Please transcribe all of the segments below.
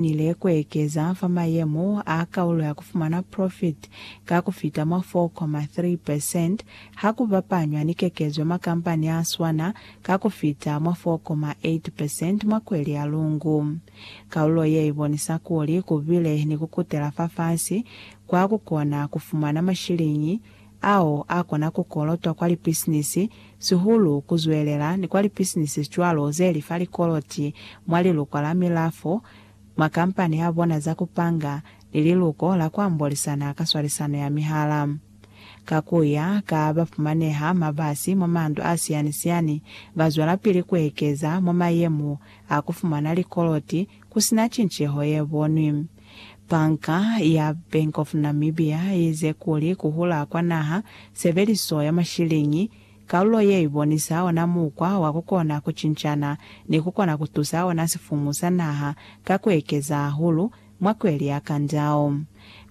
nile kuekeza fa mayemo a kaulo ya kufumana profit ka kufita mwa 4.3 percent ha ku bapanywa ni kekezo ya makampani a swana ka kufita mwa 4.8 percent mwa kweli ya Lungu. Kaulo ye ibonisa kuli kubile ni kukutela fafasi kwa kukona kufumana mashiliñi ao a kona ku kolotwa kwa lipisinisi sihulu ku zwelela ni kwa lipisinisi cwalo ze li fa likoloti mwa Liluko la Milafo, mwa kampani ya bona za ku panga, ni Liluko la ku Ambolisana ka Swalisano ya Mihala. Ka ku ya ka ba fumaneha mabasi mwa mandu a siyani-siyani, ba zwelapili ku ekeza mwa mayemo a ku fumana likoloti ku si na cinceho ye bonwi. Banka ya Bank of Namibia iize kuli ku hula kwa naha, sebeliso ya mashiliñi, kalulo ye i bonisa ona mukwa wa ku kona ku cincana ni ku kona ku tusa ona sifumu sa naha ka ku ekeza hahulu mwa kweli ya kandao.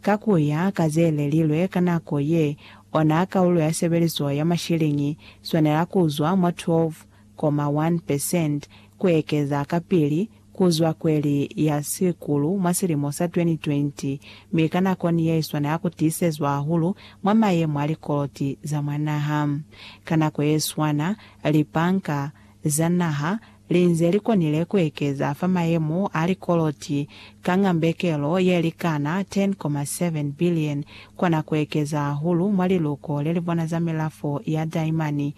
Ka ku ya ka ze lelilwe ka nako ye, ona kalulo ya sebeliso ya mashiliñi swanela ku zwa mwa 12.1 percent ku ekeza kapili kuzwa kweli ya sikulu mwa silimo sa 2020, mi ka nako ni yeiswana ya kutiisezwa hahulu mwa mayemo a likoloti za mwa naha. Ka nako yeswana, lipanka za naha linze likonile kuekeza fa mayemo a likoloti ka ngambekelo yelikana 10.7 billion, kona kuekeza hahulu mwa liluko lelibona za milafo ya daimani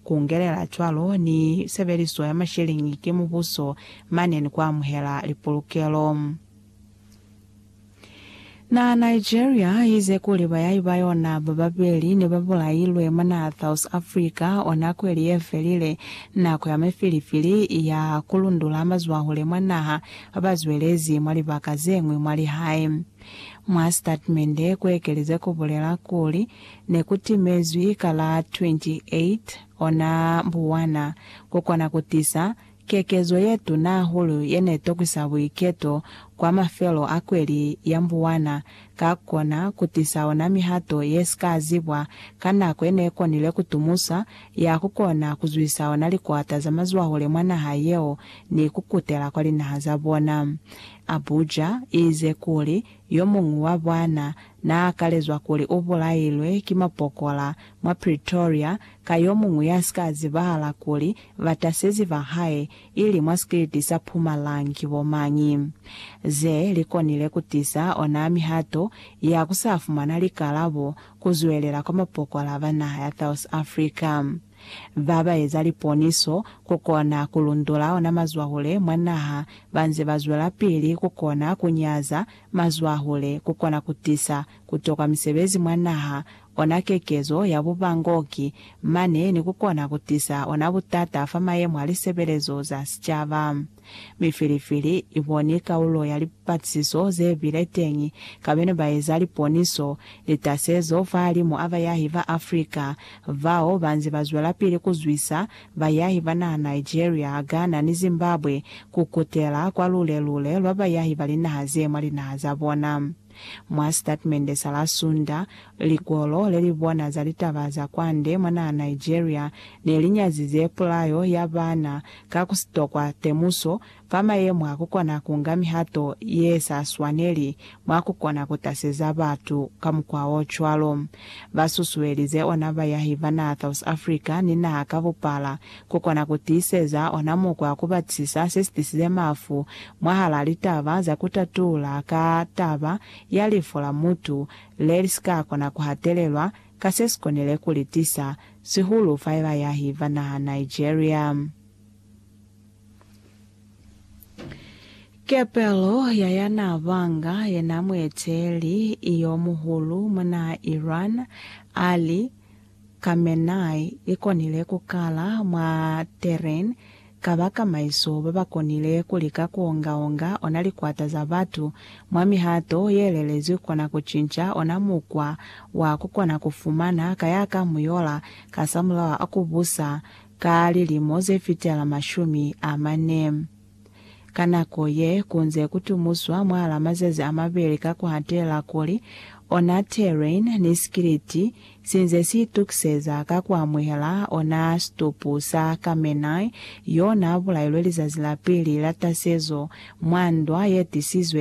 Ku ngelela cwalo ni sebeliso ya masheleñi ki mubuso mane ni ku amuhela lipolokelo. Naha Nigeria ize kuli bayahi ba yona ba babeli ne ba bulailwe mwa naha South Africa o nako ili ye felile, nako ya mifilifili ya ku lundula mazwahule mwa naha ba ba zwelezi mwa libaka ze ñwi mwa lihae. Mwa sitatmende ku ekeleze ku bulela kuli, Ne ku timezwi ka la 28 ona buwana ku kona ku tisa kekezo ye tuna hahulu ye ne tokwisa buiketo kwa mafelo a kweli ya buwana ka ku kona ku tisa ona mihato ye si ka zibwa ka nako ye ne konile ku tumusa ya ku kona ku zwisa ona likwata za mazwahule mwa naha yeo ni ku kutela kwa linaha za bona. Abuja i ize kuli, Yo muñwi wa bana Naa kalezwa kuli u bulailwe ki mapokola mwa Pretoria ka yo muñwi ya si ka zibahala kuli batasezi ba hae ili mwa sikiliti sa Pumalang ki bo mañi. Ze li konile ku tisa ona mihato ya ku sa fumana likalabo ku zwelela kwa mapokola ba naha ya South Africa ba ba eza liponiso ku kona ku lundula ona mazwahule mwa naha ba nze ba zwelapili ku kona ku nyaza mazwahule kukona kutisa kutoka misebezi mwa naha, ona kekezo ya bubangoki, mane ni kukona kutisa ona butata fa mayemo a lisebelezo za sicaba. Mi filifili i boni kaulo ya lipatisiso ze bile teñi ka bene ba eza liponiso, litasezo fahalimu a bayahi ba Africa bao ba nze ba zwelapili ku zwisa bayahi ba naha Nigeria, Ghana ni Zimbabwe ku kutela kwa lule-lule lwa bayahi ba linaha ze mwa linaha za bona. Mwa sitatimende sa la Sunda, likolo le li bona za litaba za kwande mwa naha Nigeria ne li nyazize pulayo ya bana ka ku si tokwa temuso Fa mayemo a kukona ku nga mihato ye sa swaneli mwa kukona ku taseza batu ka mukwa o cwalo, ba susuelize ona bayahi ba naha South Africa ni naha ka bupala ku kona ku tiiseza ona mukwa wa ku batisisa se si tisize mafu mwahal'a litaba za ku tatula ka taba ya lifu la mutu le li si ka kona ku hatelelwa ka se si konile ku li tisa, sihulu fa bayahi ba naha Nigeria. Kepelo ya ya naa banga yena mueteli yo muhulu mwa naha Iran, Ali Khamenei, i konile ku kala mwa Tehran ka bakamaiso ba ba konile ku lika ku onga-onga ona likwata za batu mwa mihato ye lelezwi kona ku cinca ona mukwa wa ku kona ku fumana ka ya ka muyola kasamulaho a ku busa Ka lilimo ze fitela mashumi a mane, ka nako ye ku nze ku tumuswa mwahal'a mazazi a mabeli ka ku hatela kuli ona Terrain ni Skiliti si nze si itukiseza ka ku amuhela ona situpu sa Khamenei y'o n'a bulailwe lizazi la pili la tasezo mwa ndwa ye tisizwe